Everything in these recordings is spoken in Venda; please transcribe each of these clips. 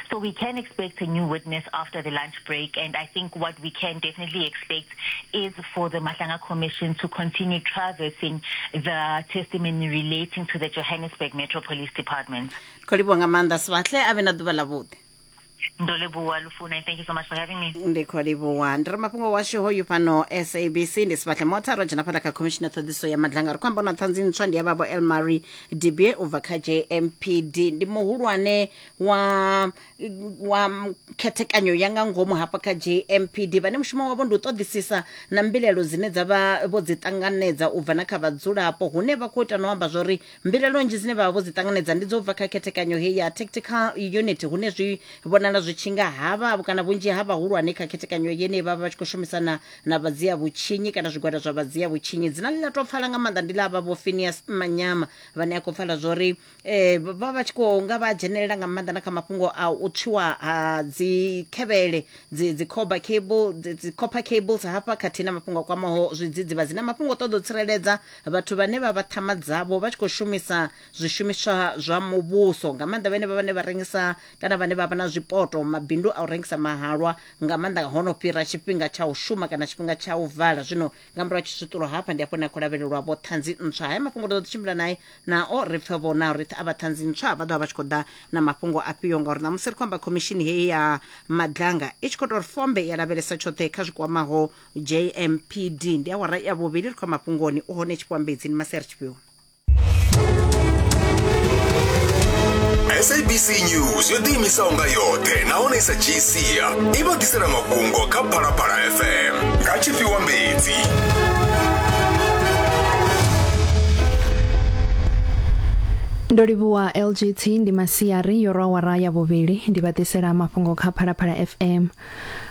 So we can expect a new witness after the lunch break, and I think what we can definitely expect is for the Mahlanga Commission to continue traversing the testimony relating to the Johannesburg Metro Police Department. kholibwa nga maanḓa sibahle a vhe na ḓuvha ḽavhuḓi Ndoleboa Lufuna, and thank you so much for having me. ndi kholibwa ndi re mafhungo washu hoyu fhano sabc ndi sibahle motha ro dzhena phanḓa kha khomishina ṱhoḓiso ya madlanga ri khou amba na ṱhanzi ntswa ndi ya vhavho elmary Dibie u bva kha JMPD ndi muhulwane wa wa khethekanyo ya nga ngomu hafha kha JMPD vhane mushumo wavho ndi u ṱoḓisisa na mbilaelo dzine dza vha vho dzi ṱanganedza u bva na kha vhadzulapo hune vha khou ita no amba zwori mbilaelo nnzhi dzine vha vha vho dzi ṱanganedza ndi dzo bva kha khethekanyo heyi ya tactical unit hune zwi vhonala zwi tshi nga havha kana vhunzhi ha vhahulwane kha khethekanyo yeneyi vha vha vha tshi khou shumisana na vha dzia vhutshinyi kana zwigwada zwa vha dzia vhutshinyi dzina ḽi ḽa tou pfala nga maanḓa ndi ḽa vha vho phineas manyama vhane a khou pfala zwa uri eh, vha vha vha tshi khou nga vha dzhenelela nga maanḓa na kha mafhungo a u tswiwa ha dzikhevhele dzi dzi copper cable dzi dzi copper cables hafha khathihi na mafhungo a kwamaho zwidzidzivhadzi na mafhungo a ṱoḓa u tsireledza vhathu vhane vha vha ṱhama dzavho vha tshi khou shumisa zwishumiswa zwa muvhuso nga maanḓa vhane vha vhane vha rengisa kana vhane vha vha na zwipoto mabindu a u rengisa mahalwa nga maanḓa ho no fhira tshifhinga tsha u shuma kana tshifhinga tsha u vala zwino nga murahu tshisutula hafha ndi afho ni a khou lavhelelwa vho ṱhanzi ntswa haya mafhungo ri ḓo ḓi tshimbila naye nao ri pfe vho nao ri pfe a vha ṱhanzi ntswa vha ḓovha vha tshi khou ḓa na mafhungo afhio ngauri ṋamusi ri khou amba khomishini heyi ya madlanga i tshi khou tou ri fombe ya lavhelesa tshoṱhe kha zwi kwamaho jmpd ndi awara ya vhuvhili ri khou ya mafhungoni u hone tshipwambedzi ni maseri tshifhiwa sabc news yo ḓiimisaho nga yoṱhe nahone i sa dzhii sia i vha ḓisela mafhungo kha phalaphala fm nga tshifhiwa mbedzi ndo livhuwa lgt ndi masiari yo rwa wara ya vhuvhili ndi vha ḓisela mafhungo kha phalaphala fm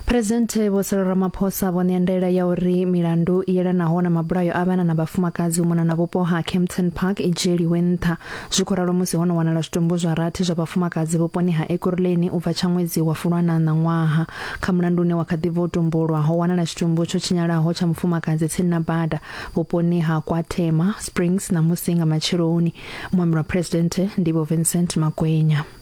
Phresidennde Vho Cyril Ramaphosa vho ṋea ndaela ya uri milandu i yelanaho na mabulayo a vhana na vhafumakadzi u mona na vhupo ha Kempton Park i dzhieliwe nṱha. Zwi khou ralo musi ho no wanala zwitumbu zwa rathi zwa vhafumakadzi vhuponi ha Ekurhuleni u bva tsha ṅwedzi wa Fulwana ṋaṅwaha. Kha mulandu une wa kha ḓi bva u tumbulwa, ho wanala tshitumbu tsho tshinyalaho tsha mufumakadzi tsini na bada vhuponi ha KwaThema Springs ṋamusi nga matsheloni. Muambeli wa Phresidennde ndi Vho Vincent Makwenya.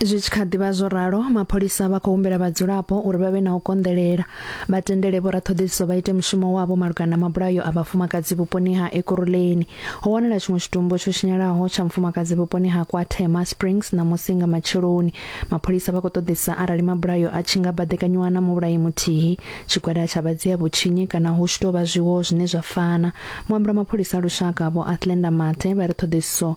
zwi tshi kha ḓivha zwo ralo mapholisa vha khou humbela vhadzulapo uri vha vhe na u konḓelela vha tendele vhoraṱhoḓisiso vha ite mushumo wavho malugana na mabulayo a vhafumakadzi vhuponi ha ekuruleni ho wanala tshiṅwe tshitumbu tsho tshinyalaho tsha mufumakadzi vhuponi ha kwathema springs na musinga matsheloni mapholisa vha khou ṱoḓisa arali mabulayo a tshi nga baḓekanyiwa na muvhulayi muthihi tshigwada tsha vhadzia vhutshinyi kana hu tshi tou vha zwiwo zwine zwa fana muambula mapholisa a lushaka vho athlenda mathe vha ri ṱhoḓisiso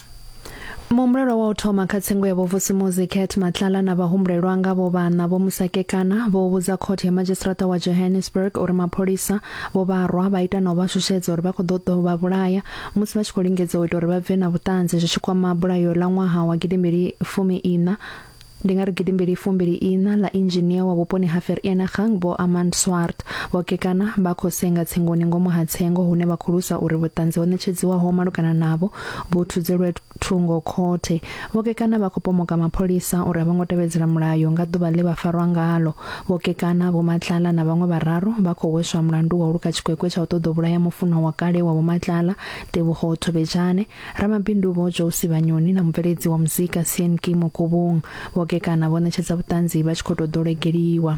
muhumbulelwa wa u thoma kha tsengo ya vhovusimuzi cat matlala na vhahumbulelwa nga vho vhana vho musakekana vho vhudza khothe ya madzhisiṱiraṱa wa johannesburg uri mapholisa vho vharwa vha ita na u vha shushedza uri vha khou ḓo ḓo vha vhulaya musi vha tshi khou lingedza u ita uri vha bve na vhuṱanzi zwi tshi kwama bulayo ḽa ṅwaha wa gidimbili fumi ina Ndi nga ri gidi mbili fumbili iṋa ḽa inzhinia wa vhuponi ha Vereeniging, Vho Armand Swart, vho kekana vha khou senga tsengoni ngomu ha tsengo hune vha khou lwisa uri vhuṱanzi ho ṋetshedziwaho malugana navho vhu thudzelwe thungo khothe. Vho kekana vha khou pomoka mapholisa uri a vho ngo tevhedzela mulayo nga ḓuvha ḽe vha farwa ngalo. Vho kekana, Vho Matlala na vhaṅwe vhararu vha khou hweswa mulandu wa u luka tshikwekwe tsha u ṱoḓa u vhulaya mufunwa wa kale wa Vho Matlala, Tebogo Thobejane. Ramabindu Vho Jousi Vhanyoni na mubveledzi wa muzika Sean Kimo Kobong vho gekana vho ṋetshedza vhuṱanzi vha tshi khou tou ḓolegeliwa.